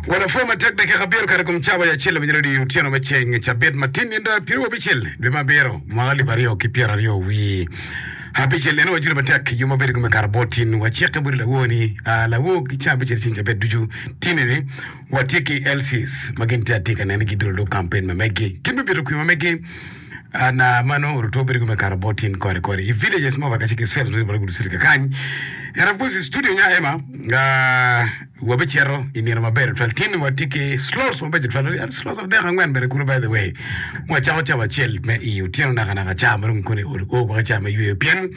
Wa lapor matek dakika abiro kare i kom cawa ya acel lawinyere odii otyeno me ceng cabit ma tin nyen dar piriwo abicel dwe me abiro mwaka alip aryo ki pyera aryo wi abicel neno wa jule matek yom mabedo gume kara bot tin wa cikke budi lawo ni a lawo ki ceng abicel ceng cabit ducu tini ni wa tye ki lcs ma gin tye atika nene gi dolo lok kampen ma meggi kit me bito kwima meggi An a ma nongo orute obedo kome kare bot tin kore kore i villages mo baka ciki cell ribolo gudu sirika kany and of course studio nya ema nga wabe cero i nino maber tutwal tin wa tiki slots mabejo tutwal wadi and slots adek angwen bene kudu by the way mo acako cabo acel me i otyeno naka naka cha ma dong kone oru o baka cha me yweyo pien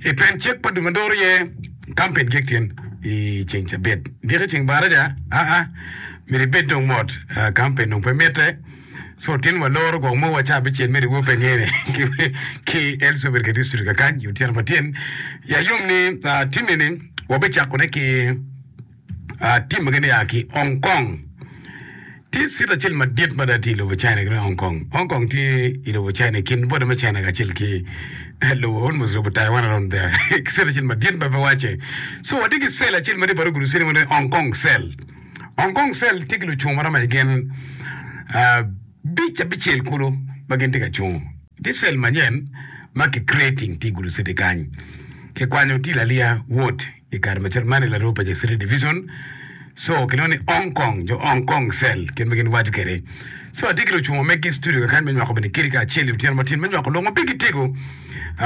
i pen cek pa duma doro ye kampen gik tin i ceng cabit giki ceng baraja a a miri bed dong mot kampen dong pe mite So tin wa loro gwok mo wa cabicel me riwo Penielle ki, ki Elsabet ka district akany i otyeno ma tyen. Ya yom ni ah, tim eni wabicakone ki ah, tim magi ni a ki Hong Kong. Tye city acel madit mada tye i lobo China ki dong Hong Kong. Hong Kong tye i lobo China i kin border me China kacel ki eh, lobo almost lobo Taiwan around there. City acel madit ma pe wacce. So watye ki cell acel madit bot ogulu city mo ni Hong Kong cell. Hong Kong Cell tye ki lucung ma romo i gin abic abicel kulu ma gin tye ka cungo. Tye cell manyen ma ki creating tye i Gulu City kany. Ki kwanyo Till Alia ward i kare ma cal man i Laroo Paja City Division. So ki lwongo ni Hong Kong, jo Hong Kong Cell kit ma gin waco kede. So atye ki lucungo megi studio kekany me nywako bene kiri kacel i otyeno matin me nywako lok ma pigi tego.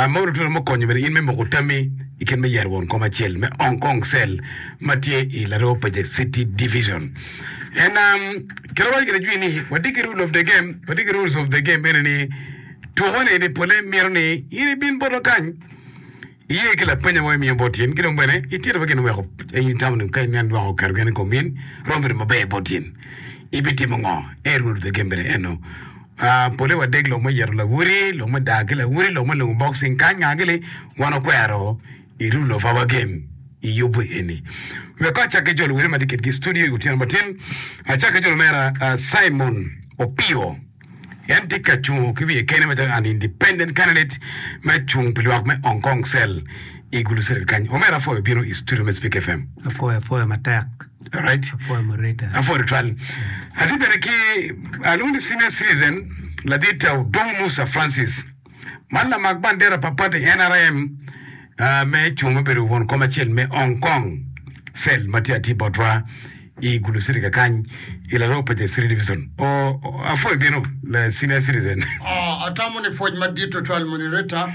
Modo twero me konyo bene in me moko tammi i kit me yero won kom acel me Hong Kong cell ma tye i Laroo Pacific City Division. En um, kit awaco kede jwi ni watye ki rule of the game, watye ki rules of the game ene ni tuko-ni ni pole mito ni in ibin bota kany iye ki lapenya mo imiyo bot in ki dong bene itito wa gin weko in itamo ni ka in nen dwoko keto gene i kom in romo bedo maber bot in ibitimo ngo en rule of the game bene eno Pole wadek lok me yeto lawoti, lok me dak ki lawoti, lok me lungo boxing kany ngaa ki li wan okwero i rule of our game i yubu eni. Wek ko acak ki jo luwoti ma tye kitgi i studio i otyeno matin, acak ki jo lumera Simon Opio en tye ka cungo ki wiye kene macalo an independent candidate me cung pi lwak me Hong Kong cell i gulu circuit kany. Omera afoyo bino i studio me Speak FM. Afoyo afoya matek. Alright. Apwoyo Marita. Apwoyo tutwal. Atye bene ki alwongo ni senior citizen ladit Odong Musa Francis. Man lamak bandera pa party NRM uh, me cung me bedo won kom acel me Hong Kong cell ma tye atir botwa i Gulu City kakany i Laroo Paja City Division. O, o- apwoyo bino la senior citizen. Ah, atamo ni pwoc madit tutwal moni Rita.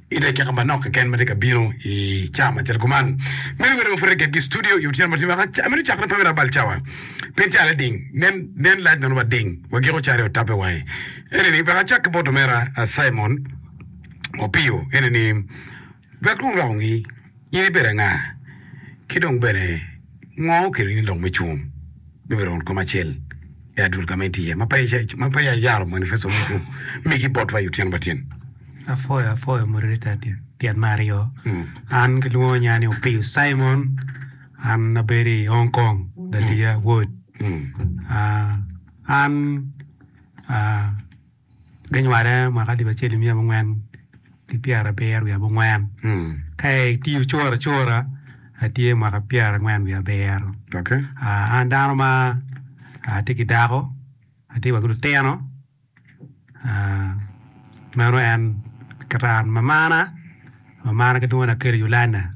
I dakika ma manok keken ma tye ka bino i cawa macalo kuman, meno wer ma pud iketgi i studio i otyeno ma tye waka ca. Meno cakre pami labal cawa, pien tye alel ding. Nen, nen lac nono bad ding, wa giko cari otape wange. Ene ni, wek acak ki bot omera Simon Opio, ene ni, Wek Rwom rwak ongi. In ibedo anga, ki dong bene ngo okelo in lok me cung me bedo won kom acel i adul ka ma in tye iye ma peya iyaro manifesto megu migi botwa i otyeno matyen? Apwoyo apwoyo moderator tyen me aryo. An gilwongo nya ni Opiyo Simon, an abedo i Hong Kong, Dadiya Wod. An Ginywale mwaka alip acel nimiya abongwen ki pyerabiro wiye abongwen. Ka itiyo cura cura atye mwaka pyerangwen wiye abiro. Okay. Ah, an dano ma atye ki dako, atye wa ki lutino. Ah, meno en kit an. Mamana, mamana ki dwona Kerry Yolanda.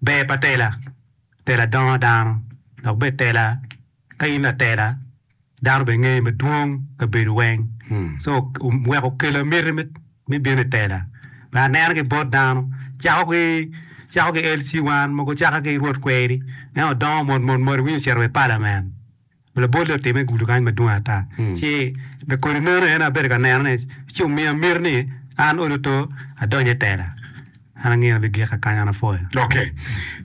Ber pa tela, Tela dongo dano, dok bed tela ka in latela dano bene ngeye madwong kabedo weng so wek okela miti me bino i tela me anena ki bot dano cako ki cako ki LC1 mogo caka ki Rwot kweri en odongo mot mot mot iwinyo ocito wa i palament Labolle otimme i gudo kany madwong ata. Ci me kodi meno en abedo ka neno ni ci omiya miti ni an olo to adonyo i tela. An angeyo ni abigika kany an apwoyo. Okay.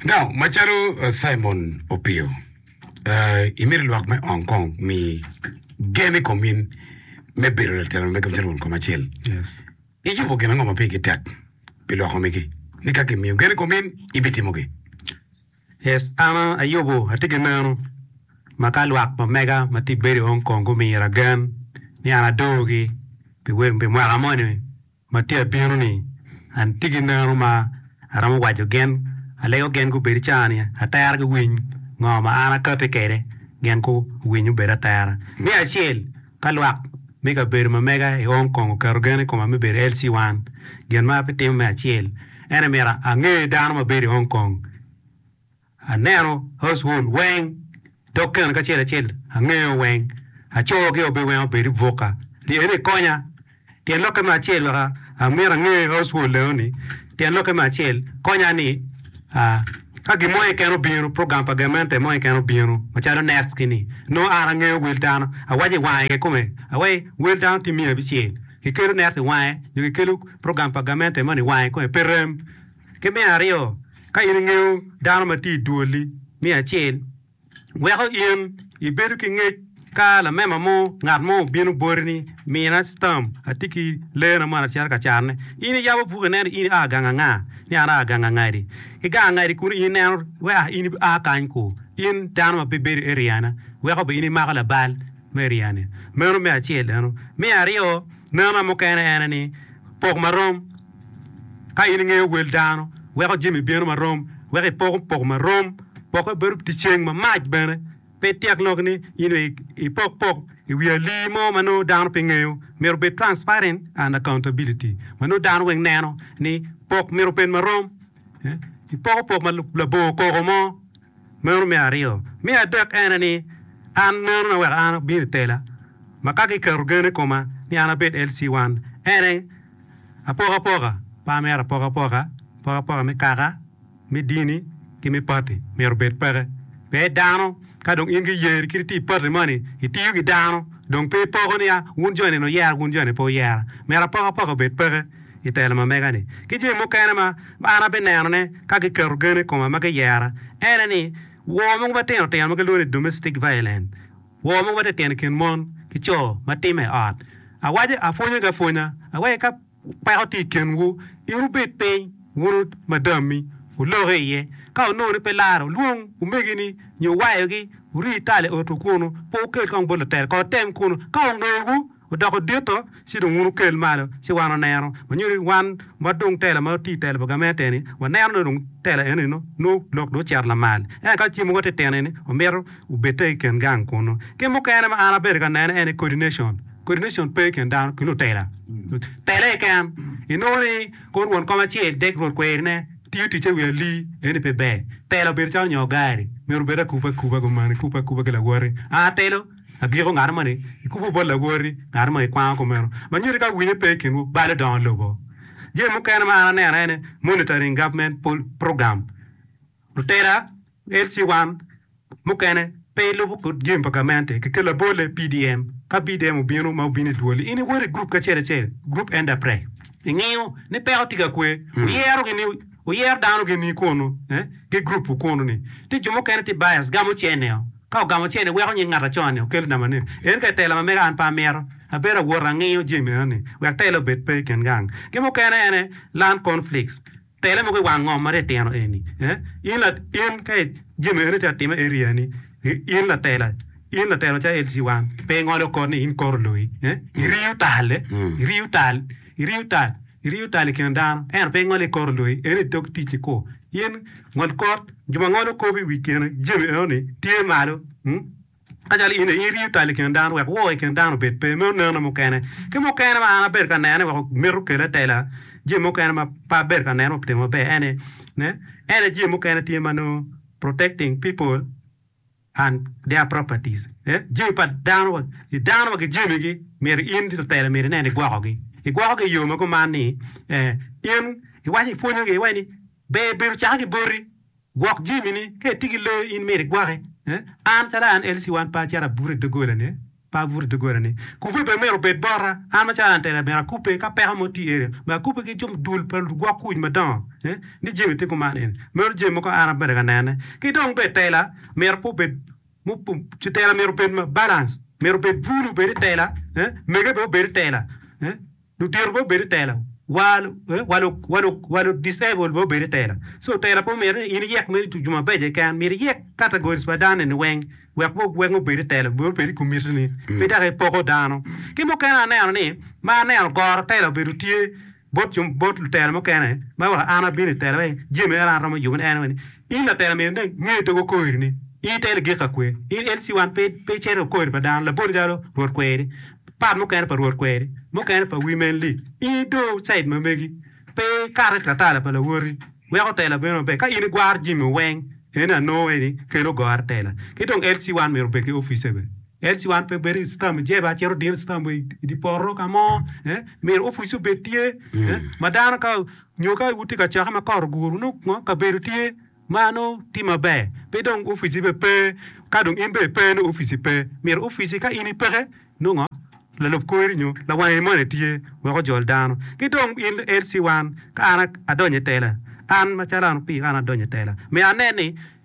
Now, macalo uh, Simon Opio, uh, imiti lwak me ong kong mi gen i kom in me bedo latelo mege macalo won kom acel. Yes. Iyubo gin ango ma pigi tek pi lwak omegi? Ni ka kimiyo gen i kom in, ibitimogi. Yes, an ayubo atye ki meno. Ma ka lwak ma mega ma tye ka bedo i Hong Kong gumira gen ni an adoogi pi mwaka moni ma tye ka bino-ni, an tye ki meno ma aromo waco gin, alego gin gubedo ca ni atera giwiny ngo ma an akati kwede gin guwiny obed atera. Me acel, Ka lwak me kabedo ma mega i Hong Kong oketo gen i koma me bedo LC 1, gin ma abitimo me acel en myero ange dano ma bedo i Hong Kong, aneno household weng dok keno ki acel acel angeyo weng, acogi obed weng obed i buka ni en ekonya. Tyen lokke me acel wek amyero ange Oswald leo ni, tyen lokke me acel konya ni a ka gin mo keken obino, program pa gamente mo keken obino macalo next ki ni nongo an angeyo wel dano awaco i wange ke kome awaci ni wel dano tye miya abicel ki kelo next i wange nyo ki kelo program pa gamente moni i wange kome pe rem. Ki me aryo ka in ingeyo dano ma tye i dwoli me acel. weko in ibedo ki ngec ka lamema mo ngat mo obino boti ni, Mina citam, atye ki leena moni acito ka canone. In iyabo buk ineno ni in ia gang anga, ni an aa gang angadi. Ki gang angadi kunu in ineno wek a in ia kany ku. In dano ma pe ibedo i eriana, weko bene in imako labal me eriani. Meno me acel eno. Me aryo, nena mukene ene ni, pok marom. Ka in ingeyo wel dano, weko jami bino ma rom, weko ipoko poko ma rom, pokke bedo pi ceng ma mac bene. Pe ityek lok ni in dong ipok pok i wi alii mo ma nongo dano pe ngeyo. Myero obed transparent and accountability ma nongo dano weng neno ni pok myero obed ma rom. Ipoko pok ma labongo koko mo Meno me aryo. Me adek en aye ni, An meno na weko an abino i tela, ma ka giketo gen i koma ni an abed LC1, en aye apokapoka pe amito apokapoka, apokapoka me kaka, me dini, ki me pati myero obed peke. Pee dano, ka dong in ki yeri kit iti i pati moni, itiyo ki dano, dong pe ipoko ni, a, wun joni ni wuyera, wun joni pe wuyera. Myero apokapoka obed peke. i telo ma mega-ni, ki jami mukene ma an abinenone ka giketo gen i koma ma giyera, en aye ni, wor mogo matino tino ma gilwongo ni domestic violence, wor mogo matino tino i kin mon ki co ma timme i ot. Awaco, apwonyo gi apwonya, awaco ka peko tye i kinwu, in wubed piny wun madammi, wuloki iye, ka wunongo ni pe lare, wulwong omegini nyo wayogi, wuri i tal i otwu kunu, pe wukel kong bot lutel, kono wutem kunu, ka wungeyowu, Odoko dito ci dong wun wukel malo ci wan waneno. Manyo ni wan ma dong tela ma oti tela pa gamente-ni waneno ni dong tela eno ni nongo lok dong ocito lamal. Ento ka ci mogo atir tino-ni omito obedde i kin gang kunu. Kit mukene ma an abedo ka nene en ni coordination. Coordination pe i kin dano ki lutela. Tela keken inongo ni kor won kom acel dek rwod kwerine tiyo ticce i wi alii eno ni pe ber. Tela obedo calo nyongo gari myero obed akupe akupe gumane kupe akupe ki lawoti. An atelo. Agiko, ngano ma ni ikubo bot lawoti, ngano ma ikwango kumeno ma nyuti ka winyo pe i kinwu balo dongo lobo? Jami mukene ma an aneno aye ni Monitoring Government Program, lutela, LC1, mukene pe ilubo kit jami pa gamente ki kela bole PDM. Ka PDM obino ma obino idwoli, in iwoto i group ki acel acel, group enterprise, ingiyo ni peko tye ka kwe, wuyero gi ni. Wuyer dano gini kwonu ki group wu kwonu ni tye jo mukene tye bias gamo chair neo ka ogamo chair ni weko nying ngat acon ni okel nama ni en ka itela ma mega an pe amito abedo awot angiyo jami meno ni wek tela obed pe ikin gang ki mukene en aye land conflicts tele mogo iwang ngom ma titino eni in la in ka jami eni tye atime area ni in latela in latela calo LC1 pe ingolo kod ni in koro loyi iriyo tal iriyo tal. Iriyo tal, iriyo tal i kin dano, ento pe ingole i kor oloyi, en i dog ticci ku. In, ngol kor, jo ma ngolo kop i wi kine jami enoni tye malo. Kacalo in-ni, iriyo tal i kin dano, wek wor i kin dano obed pe, me onenna mukene. Ki mukene ma an abedo ka nene wek mito kela tela, jami mukene ma pe abedo ka neno timo maber, en aye, ne, en aye jami mukene tye ma nongo protecting people. and their properties, eh, jami pa dano wa, ni dano wa ki jamigi, myero in lutela myero inen ni igwokogi. Igwokogi i yo ma kuman ni, eh, in iwaco ipwonyogi iwaco ni ber bedo cake ki boti, gwok jamini, ka itye ki lee in myero igwoki, eh, an calo an Elsie wan pe acito abuto i dogolane, Pe abuto i dogolani. Kubbe bene myero obed bota. An macalo an tela, myero akubbe ka peko mo tye eno. Myero akubbe ki jami dul pa lugwok kuc madongo ni Jemi tye kuman eni. Meno jami mogo an abedo ka nene. Ki dong bene tela myero pe obed, tela myero obed balance, myero obed bulu obed i tela, mege bene obed i tela. Lutino pe obedo tela wa lu disabled be obedo tela so tela pe omyero ni in iyek mere jo mabeco keken myero iyek categories pa dano ni weng wek weng obed itela obed obed ikomiti ni pe dok ipoko dano ki mukene aneno ni ma aneno goro tela obedo tye bot lutela mukene ma wa an abino itela jami en aye an aromo yubone en ni In latel amyero ineg nge dog okori ni in ite ligik ka kwe. In LC wan pe pe icero okori pa dano labol calo Rwot kweri, part mukene pa Rwot kweri, mukene pa Women li i do side ma megi pe ikate latala pa lawoti weko tela bedo maber ka in igwaro jimi weng ene ano eni kelo gore tela ki dong LC wan myero obed ki office be LC wan pe bedo i stam jebe a cito dino i stam i di poto ka mo eh myero office obed tye eh ma dano ka Nyo ka wutye ka cokke ma kot oguru, nongo kabedo tye ma nongo tye maber, pe dong opic-ci bene pe. Ka dong in bene ipe, nongo opic-ci pe. Myero opic-ci ka in ipeke, nongo lalub kweri nyo lawangi moni tye wek ojol dano. Ki dong in LC1, ka an adonyo i tela, an macalo an opii ka an adonyo i tela, myero anen ni,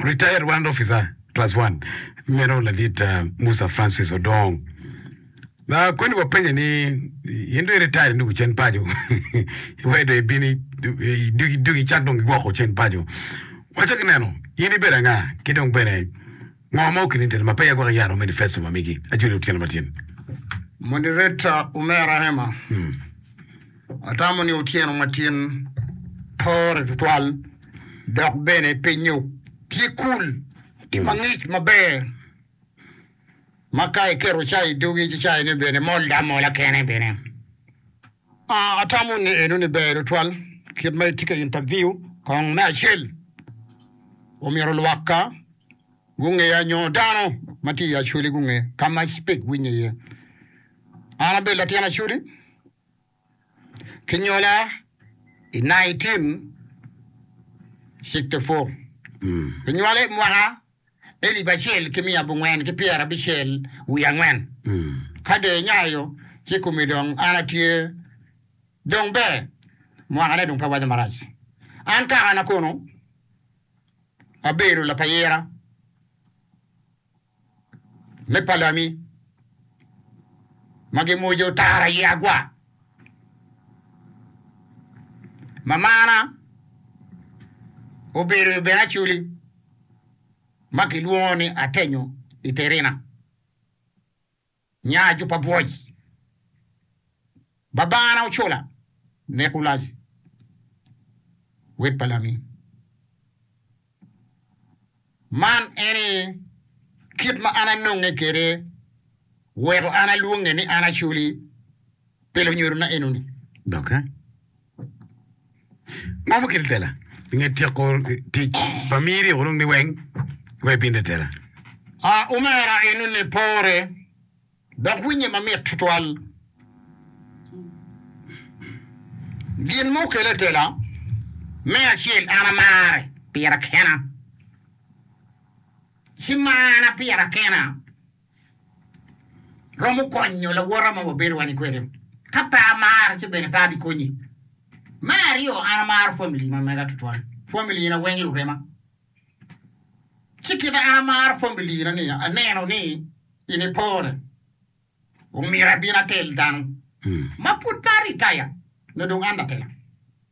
Retired Warrant Officer Class One meno Ladit uh, Musa Francis Odong. Na koni wapenye ni in do iretired induku cen paco iwe do ibini iduki duki cak dong gigwoko cen paco. Waco ki neno in ibedo anga ki dong bene Ngo ma Okilinton ma peya gwoko yero manifesto ma migi ajoli otyeno matin? Moderator, Omera Hema, atamo ni otyeno matin pore tutwal dok bene pe nyok. Tye cool, tye mangic maber ma ka iketo cai i dogi ci caine bene mol amola kene bene. Atamo ni enoni ber tutwal kit ma itye ka interview kong. Me acel, omyero lwakka gungeya nyo dano ma tye i Acholi gunge ka ma I speak winye iye. An abedo latin Acholi, kinyola I nineteen sixty four, kinywala I mwaka elip acel ki miya abongwen ki pyer abicel wiye angwen. Ka dong inyayo ci kumi dong an atye. Dong ber, mwakane dong pe waco marac. An kaka na kono abedo lapayira me palami ma gimojo tara i agwa, mamana obedo bene aculi. ma kilwongo ni Atenyo i Terina, nya ajuba bwoc. Babana ocola, Nekulazi, wed pa Lami. Man eni kit ma an anonge kwede weko an alwonge ni an acoli pi lunyodona enoni. Doki. Mom okel tela i nge tyeko tic pa mir i urung ni weng wa i binde tela. A Omera en one pore dok winye mamit tutwal. Gin ma okele tela, me acel an amare pira kena ci marana pira kena. romo konyo lawote ma wabedo wani kwede ka pe amare ci bene pe abi konyi me aryo an amaro family ma mega tutwal family na weng lurema ci kite an amaro family na ni aneno ni in ipore omyero abin atel dano ma pud pe aritaya nyo dong an atela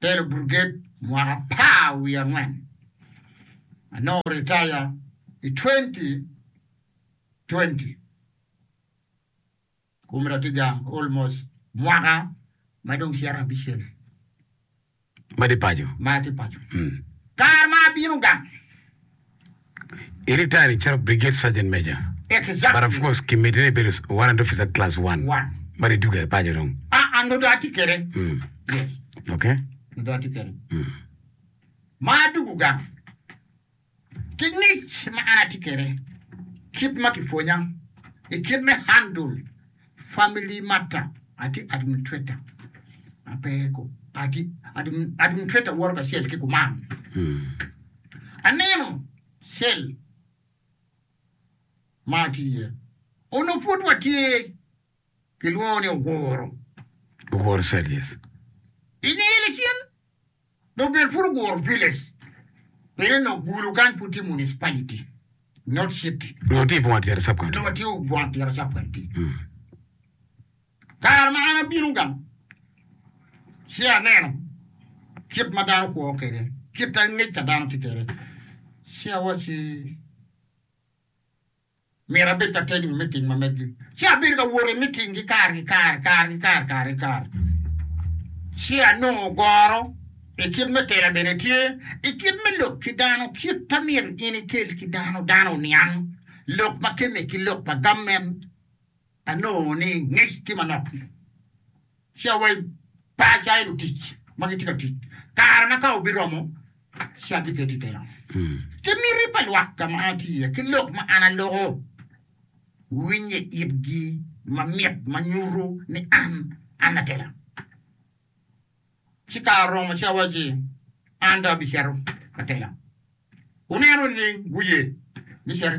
Telo Buriged mwaka apar wiye angwen. Anongo ritaya i twenty twenty. Kumra tye gang almost mwaka ma dong cito abicel Ma tye paco. ma atye paco. Kare ma abino gang, I ritari calo Brigade Sergeant Major, but of course ki medde ni ibedo Warrant Officer Class One ma ri duga i paco dong. Ah, ah, nongo dong atye kwede. Mm. Yes, Ok. nongo dong atye kwede. Mm. Ma adugo gang ki ngic ma an atye kwede, kit ma kipwonya i kit me handle Family matter, atye administrator ma pe ku atye administrator woro kacel ki kuman. Aneno cell ma atye iye onongo pud watye kilwongo ni Oguro. Oguro cell, yes. I ngeye lacen. Dong bene pud oguro village pien nok gulu kany pud tye municipality not city. Nongo tye i bunga tyera sub county. Nongo tye i bunga tyera sub county. Kare ma an abino gang ci aneno kit ma dano kwo kwede, kit angec a dano tye kwede ci awacci. Myero abed ka tening me tim ma megi, ci abedo ka wot i mitinggi kare ki kare, kare ki kare, kare ki kare, ci anongo goro i kit me tela bene tye, i kit me lok ki dano, kit ma myero in ikel ki dano, dano oniang lok ma kemme ki lok pa gammen. Anongo ni ngec tye manok ni ci awai paca i lutic ma gitye ka tic kare ma ka obiromo ci abiketi i keno ki miti pa lwak ka ma an atye iye ki lok ma an aloko winye itgi ma mit ma nyuto ni an, an lakela. Ci kare oromo ci awacci, An dong abicito, lakela. Wuneno leng guye ni citi.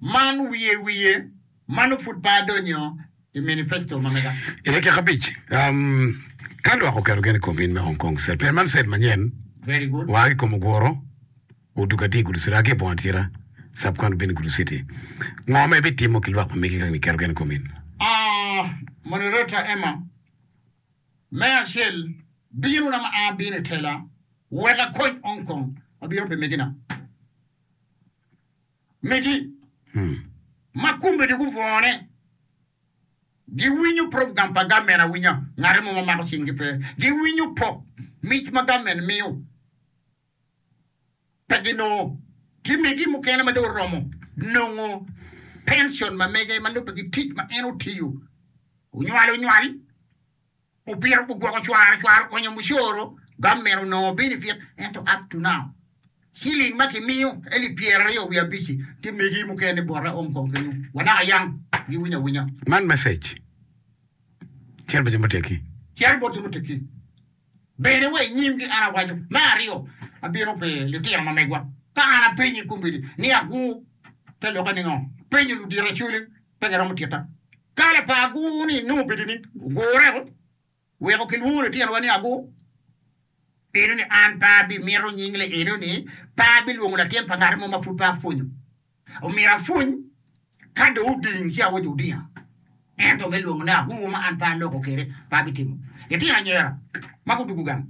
Man wiye wiye, mano pud pe adonyo i manifesto ma mega. I dakika abic, ka lwak oketo gen i kom in me Hong Kong State Plan, man state manyen waa ki i kom oguro odug atir i Gulu City, aa ki i boma atira, subcounty bino i Gulu City. Ngo ma ibitimo ki lwak ma megi ka giketo gen i kom in? Moderator Emma, Me acel, binona ma abino i tela wek akony Hong Kong, abino pi megi na. megi ma kombeddi gubwone giwinyo program pa gamen awinya, ngati mo ma mako cinggi pe, giwinyo pok mic ma gamen miyo pe ginongo, tye megi mukene ma dong oromo nongo pension ma mege ma lubbe ki tic ma en otiyo onywal onywal. Opira gugwoko cwara cwara onyo mucoro, government onongo benefit ento up to now shilling ma ki miyo elip pyera aryo wiye abic-ci tye megi mukene bote ong kong kenyu wa naka yang gi winyo awinya. Man message cito bot jo muteggi. Cito bot jo muteggi bene wa inyim gi an awaco me aryo abino pi litino ma megwa ka an apenyi kombeddi ni agur te loke ningo? Apenyo ludito acoli. Pe giromo tita. Ka lapar agur-ni nongo obedo ni ogurreko, weko kilwongo litinowa ni agur. Eno ni an pe abimito nying le eno ni pe abilwongo latin pa ngat mo ma pud pe apwonyo. Omyero apwony ka dong oding ci aoco odinga. Ento me lwongo ni agur ma an pe aloko kwede, pe abitimo. Litino anyira ma gudugo gang.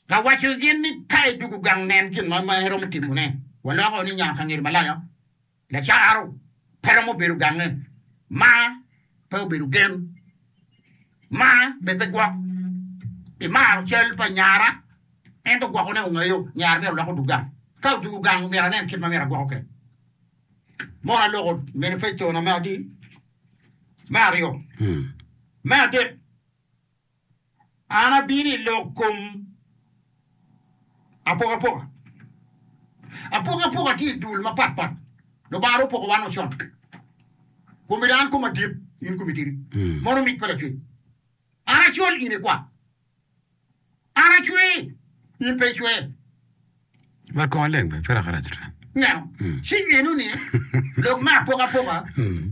Ka waco gin ni ka idwogo gang nen gin mo ma iromo timone, waloko ni nya ka ngeri malaya, lacaro pe romo bedo gange, ma pe obedo gen, ma bene pe gwok pi maro cal pa nyara, ento gwoko ne ongeyo nyara myero olok odug gang. Ka odugo gang omyero anen kit ma myero agwoko kwede. Mono aloko manifesto na me adii, me aryo, me adek. An abino i lok kom apokapoka. Apokapoka tye i dul mapat pat. Lubanga dong opoko wan o con. Kom miti an kom adit, in komi tidi. Mono mic pa lacwec. An acol in ikwa. An acwe, in pe icwe. Wat kong aleng pe, pe raka rac ata. Ineno? Ci geno ni lok me apokapoka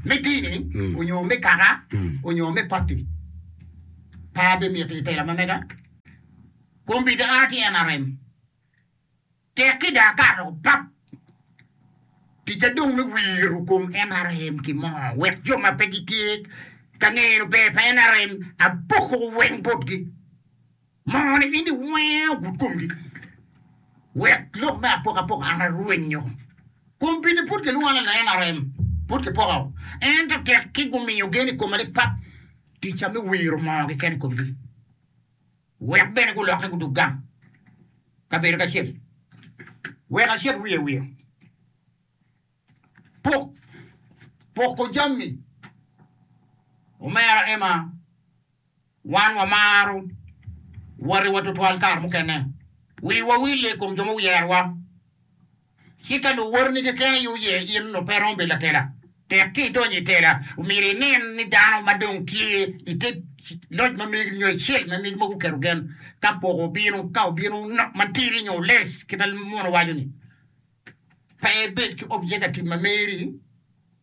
me dini onyo me kaka onyo me pati pa bimiti i tela ma mega. Kombita a ki NRM tek ki dong akato pap. Ticca dong me wiro kom NRM ki mo wek jo ma pe gitye ka ngeye lubber pa NRM apoko weng botgi. Moo ni in iwenge ogud komgi, wek lok me apokapoka an arwenyo. Kom pidi pud kilwonga ni leng ma rem, pud kipoko, ento tekki gumiyo gen i koma lipat, ticca me wiro moo keken i komgi, wek bene gulokke gudok gang kabedo kacel, wek acit wiye wiye. Pok poko jami. Omera Emma, Wan wamaro watiwa tutwal kare mukene. Wiwa wille i kom jo ma wuyerowa. Ci ka nongo watini keken aye oye in nongo pe iromo bedo latela. Tek ka idonyo i tela, myero inin ni dano ma dong tye i te loc ma megi nyo icel ma megi ma guketo gen ka poko obino, ka obino matidi nyo less kit ma muno waco-ni. Pe ibed ki objekativ ma meri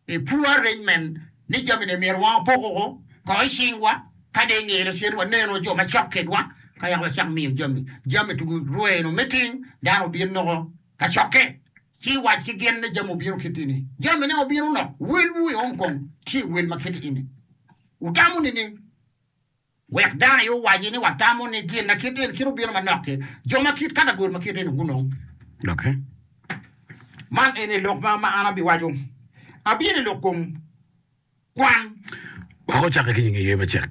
i poor arrangement ni jami ne myero wa opok oko kong i cingwa ka dong inge lacen ni waneno jo ma cok kedwa ka yaka wacako miyo jami jami tugu rwe nyo meeting dano obin noko ka cokke ci iwac ki gin ni jami obino kit ini jami ne obino nok wel wu i Hong Kong tye wel ma kit ini wutamo nining? Wek dano aye owaci ni watamo ni gin ma kit eni cito bino manok-ki, jo ma kit ka lagoro ma kit eni gunong doki. Man eni lok ma an abiwaco, Abino i lok kom kwan. Wek ocakke ki nyinge yer macek.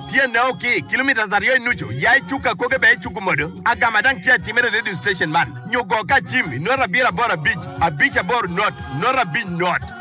Tyenne o ki kilometres aryo i nucu, ya i cuk akoge bene icuku modo agama dang tye atimere i radio station man nyo go ka acim i note abiro aboro abic abic aboro note note abic note.